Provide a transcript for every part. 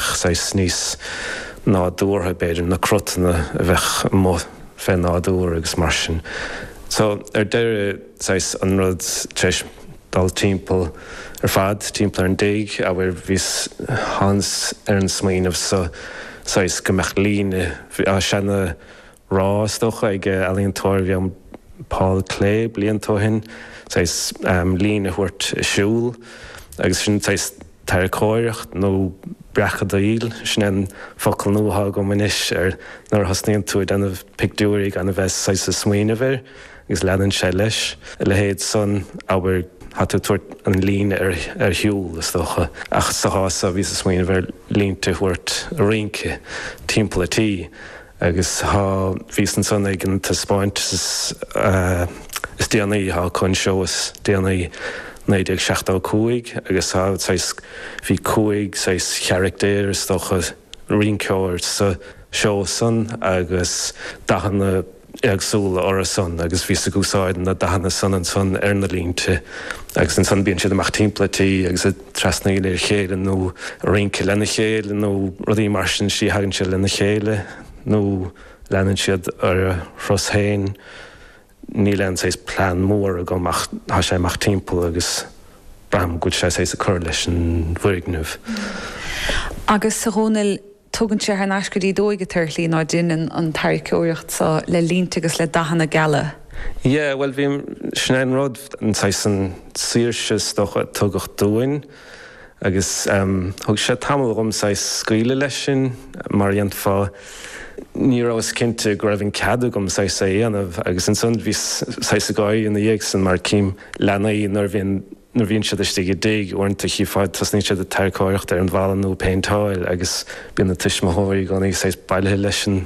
saghas níos nádúrtha, b'fhéidir, na crotanna a bheadh amuigh fé nádúr agus mar sin. So, ar deireadh, saghas an rud, tar éis dul timpeall ar fad, timpeall ar an dtigh, abair, bhíos, thánas ar an smaoineamh so, saghas go mbeadh líne, seana rá is dócha ag ealaíontóir a bhí ann Paul Klee blianta ó shin saghas líne a thabhairt ag siúl agus sin saghas tarracóireacht nó breacadaíl. Sin é an focal nua atá agam anois ar nuair a thosnaíonn tú ag déanamh pictiúirí gan a bheith saghas ag smaoineamh air agus leanann sé leis. A leithéid san abair tá tú ag tabhairt an líne ar shiúl is dócha ach sa chás so bhíos ag smaoineamh ar línte a thabhairt ag rince timpeall a' tí. Agus tá, bhíos ansan ag an taispeáint is déanaí, tá an seó is déanaí 1975 agus tá saghas, bhí cúig saghas charachtar is dócha, rinceoir sa seó san agus dathanna éagsúla ortha san agus bhíos ag úsáid na dathanna san ansan ar na línte agus ansan bíonn siad amach timpeall an tí agus trasnaíl ar a chéile nó rince lena chéile nó rudaí mar sin, is í a thagann siad lena chéile nó leanann siad ar a thuras féin. Níl aon saghas plean mór agam ach tá sé amach timpeall agus braithim go bhfuil sé saghas ag cur leis an bhfoirgneamh. Agus a Dhomhnaill Tugann sé thar n-ais go dtí d'óige tú ar shlí ná deineann an tarraiceoireacht so le línte agus le dathanna geala. Yea, bhuel, bhí, sin é an rud, an saghas an saoirse, is dócha, a tugadh dúinn agus thug sé tamall dhom saghas scaoileadh leis sin mar a dhéanfá, ní rabhas cinnte go raibh an cead agam saghas é a dhéanamh agus ansan bhíos saghas ag gáirí ina dhiaidh san mar cím leanaí nuair a bhíonn nuair a bhíonn siad istigh i dtigh, uaireanta chífeá, tosnaíonn siad ag tarraiceoireacht ar an bhfalla nó ag péinteáil agus bíonn na tuismitheoirí i gcónaí saghas bailithe leis an,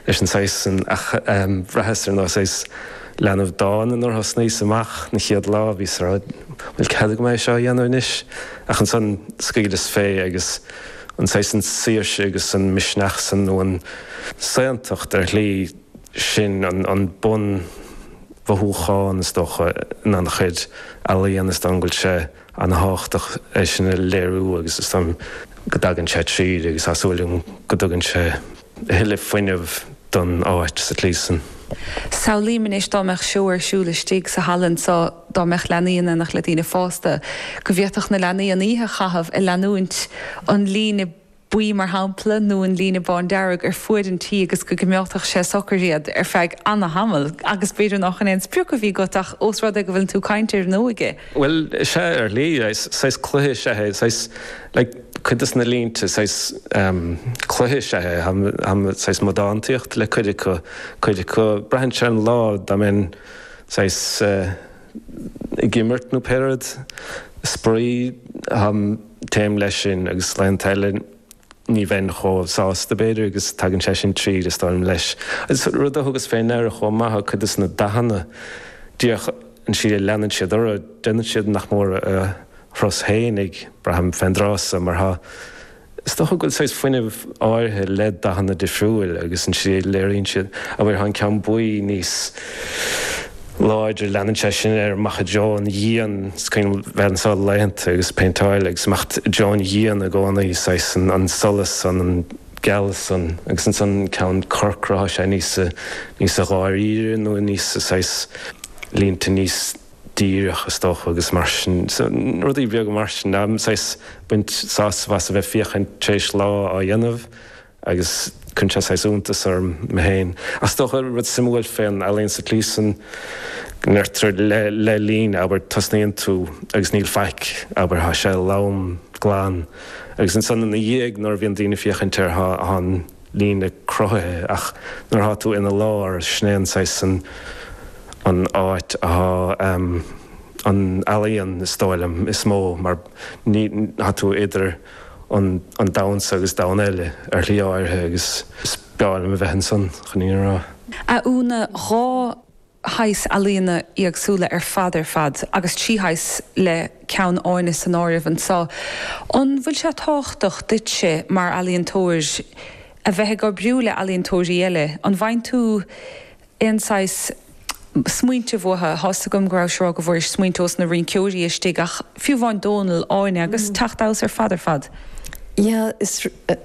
leis an saghas san ach bhraitheas ar nós saghas leanbh dána nuair a thosnaíos amach an chéad lá, bhíos ag rá, an bhfuil cead agam é seo a dhéanamh anois? Ach ansan scaoileas fé agus an saghas an saoirse agus an misneach san nó an saontacht ar shlí, Sin an bunmhothúchán, is dócha, in an-chuid ealaíon, is dóigh liom go bhfuil sé an-tábhachtach é sin a léiriú agus is dóigh liom go dtagann sé tríd agus tá súil agam go dtugann sé a thuilleadh fuinnimh don áit sa tslí san. Samhlaím anois dá mbeadh seó ar siúl istigh sa halla anso, dá mbeadh leanaí in éineacht le daoine fásta, go bhféadfadh na leanaí an oíche a chaitheamh ag leanúint an líne buí mar shampla, nó an líne bándearg ar fuaid an tí agus go gcoimeádfadh sé socair iad ar feadh ana-thamaill, agus b'fhéidir nach in aon sprioc a bhí agat ach ós rud é go bhfuileann tú ag caint, n'fheadar. Bhuel, sea, ar shlí, saghas cluiche is ea é, saghas, like, cuid de na línte, saghas, em, cluiche is ea é, em, saghas modántaíocht le cuid acu, cuid acu, braitheann sé ar an lá, dá mbeinn, saghas, eh, ag imirt nó, pé rud, spraoi, em, Téim leis sin agus laethanta eile ní bheinn chomh sásta, b'fhéidir, agus tagann sé sin tríd, is dóigh liom, leis an rud a thugas féin air chomh maith, cuid des na dathanna, díreach an tslí a leanann siad ar aghaidh, déanann siad nach mór a dturas féin, ag braith ar mo mheon an tráth san, mar atá. Is dócha go bhfuil saghas fuinnimh áirithe le dathanna difriúil agus an tslí a léiríonn siad, abair, tá an ceann buí níos. láidir. Leanann sé sin ar, imeacht ó dhíon go díon, is cuimhin liom bheith anso laethanta ag péinteáil agus imeacht ó dhíon go díon i gcónaí, saghas an solas san, an geallas san agus ansan ceann corcra, tá sé níos níos dháiríre nó níos saghas línte níos dírí is dócha agus mar sin, rudaí beaga mar sin, saghas baint sásamh as a bheith féachaint tar éis lá á dhéanamh. agus cuireann sé saghas iontas orm mé féin. Ach is dócha, rud suimiúil fén ealaín sa tslísan, n'fheadar, le líne, abair, tosnaíonn tú agus níl faic, abair, tá sé lom, glan, agus ansan ina dhiaidh nuair a bhíonn daoine ag féachaint air tá an líne cruthaithe, ach nuair atá tú ina lár, sin é an saghas an an áit atá an ealaíon, is dóigh liom, is mó mar ní, tá tú idir. an domhan so agus domhan eile ar shlí áirithe agus is breá liom a bheith ansan chun é a rá. Úna, dhá shaghas ealaíona éagsúla ar fad ar fad agus trí shaghas le ceann Áine san áireamh anseo. An bhfuil sé tábhachtach duitse mar ealaíontóir a bheith ag oibriú le ealaíontóirí eile? An bhfaigheann tú aon saghas smaointe uathu. Thá's agam go rabhais á rá go bhfuairis smaointe ós na rínceoirí istigh ach fiú amháin Dónal, Áine agus teacht amhas ar fad ar fad. Yeah, is.